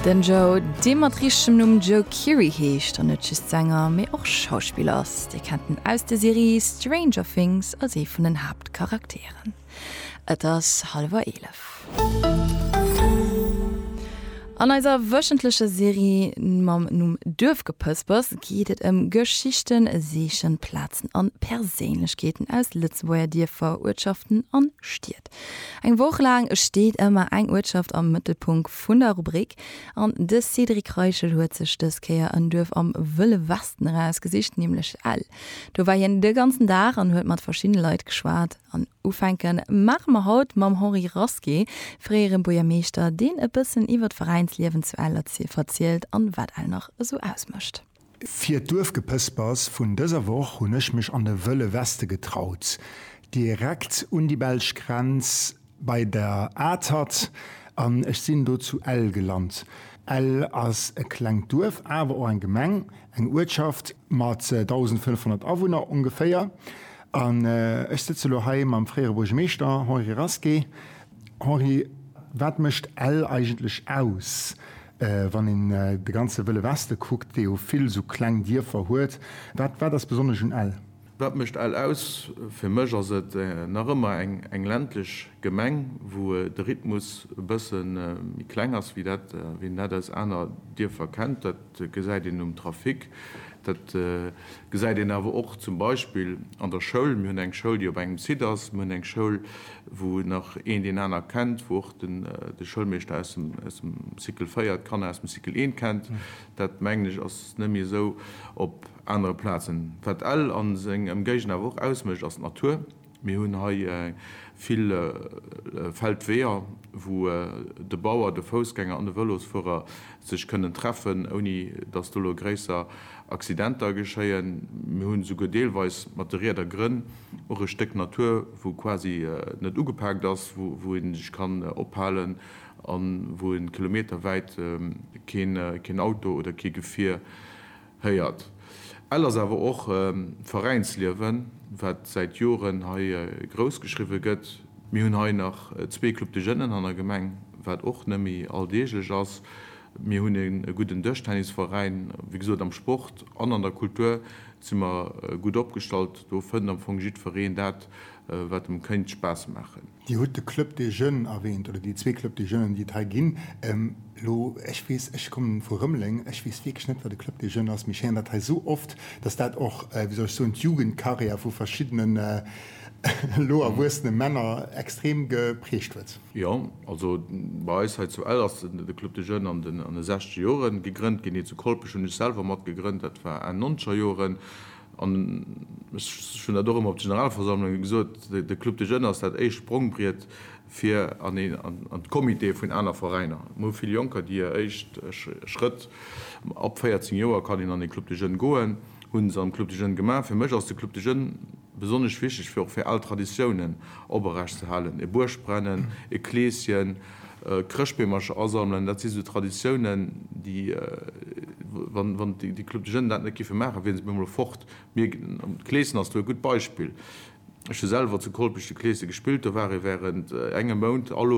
Den Joe, dee mat richtechem Numm Joe Keery heescht an net just Sänger, mee och Schauspiller ass. Dir kennt en aus der Serie Stranger Things als ee vun den Haaptcharakteren. Et ass hallwer eelef. An eiser wöchentlecher Serie mam Numm Duerfgepëspers geet et ëm Geschichten, Seechen, Plazen an Perséinlechkeeten aus Lëtzebuerger Dierfer, Uertschaften an Stied. Eng Woch laang steet ëmmer eng Uertschaft am Mëttelpunkt vun der Rubrik an de Cédric Reichel huet sech dës Kéier en Duerf am Wëlle Westen erausgesicht, nämlech Ell. Do war hien de ganzen Dag an huet mat verschiddene Leit geschwat an ufänke maache mer haut mam Henri Rasqué, fréiere Buergermeeschter, deen e bëssen iwwer d'Veräinsliewen zu Ell verzielt an wat Ell nach esou ausmécht. Fir d'Duerfgepëspers vun dëser Woch hunn ech mech an de Wëlle Weste getraut, direkt un déi belsch Grenz bei der Atert, an ech sinn do zu Ell gelant. Ell ass e klengt Duerf, awer och eng Gemeng, eng Uertschaft mat 1.500 Awunner ongeféier. An ech sëtze elo hei mam fréiere Buergermeeschter Henri Rasqué. Henri, wat mécht Ell eigentlech aus? Wann een de ganze Wëlle Weste kuckt, dee jo vill esou kleng Dierfer huet, wat wat ass besonnesch un Ell? Wat mécht Ell aus? Fir mech ass et nach ëmmer eng ländlech Gemeng, wou de Rhythmus e bësse méi kleng ass, wéi dat wéi een dat aus aner Dierfer kennt. Dat gesäit een um Trafic, dat gesäit een awer och zum Beispill an der Schoul. Mir hunn eng Schoul, déi op engem Site ass, mir hunn eng Schoul, wou nach een deen aner kennt, wou de Schoulmeeschter aus dem Cycle 4 d'Kanner aus dem Cycle 1 kennt, dat mengen ech ass net méi esou op anere Plazen. Wat Ell a seng Emgéigend awer och ausmécht ass d'Natur. Mir hunn hei vill Feldweeër, wou de Bauer, de Foussgänger an de Vëlosfuerer sech kënnen treffen, ouni datt do elo gréisser Accidenter geschéien. Mir hunn esouguer deelweis mat de Rieder Grënn. Och e Stéck Natur, wou quasi net ugepaakt ass, wou ee sech kann ophalen a wou ee kilometerwäit keen Auto oder kee Gefier héiert. Ell ass awer och Veräinsliewen, wat säit Joren hei grouss geschriwwe gëtt. Mir hunn hei nach zwee Club de Jeunen an der Gemeng, wat och net méi alldeeglech ass. Mir hunn e gudden Dëschtennisveräin. Wéi gesot, am Sport an an der Kultur si mer gutt opgestallt. Do fënnt am Fong jiddfereen dat, wat em kéint Spaass maachen. Dir hutt de Club des Jeunes erwähnt, oder déi zwee Club des Jeunes, déi et hei ginn. Elo, ech weess, ech kommen vu Rëmeleng, ech weess wierklech net, wat e Club des Jeunes ass, mee ech héieren dat hei esou oft, dass dat och, wéi soll ech soen, d'Jugendkarriär vu verschiddenen elo erwuessene Männer extrem geprägt huet. Jo, also bei eis hei zu Ell ass de Club des Jeunes an de sechzeger Jore gegrënnt ginn. Hie zu Kolpech hunn ech selwer mat gegrënnt, dat war Enn nonzeger Joren. An ech hunn dat och ëmmer op de Generalversammlunge gesot, de Club des Jeunes ass dat éischt Sprongbriet fir an d'Comitéë vun aner Veräiner. Mir hu vill Jonker, déi hir éischt Schrëtt, ab 14 Joer kann een an ee Club des Jeunes goen, hu se am Club des Jeunes gemaach. Fir mech ass de Club des Jeunes besonnesch wichteg, fir och fir al Traditiounen oprecht ze halen, e Buergbrennen, e Kleeschen. Chrëschtbeemercher asammelen, dat si sou Traditiounen, déi, wann déi Club de Jeunes dat net géife maachen, wiere se op eemol fort. Mir, d'Clesen ass do e gutt Beispill. Ech hu selwer zu Kolpech de Clese gespillt, do war ee wärend engem Mount all Owend,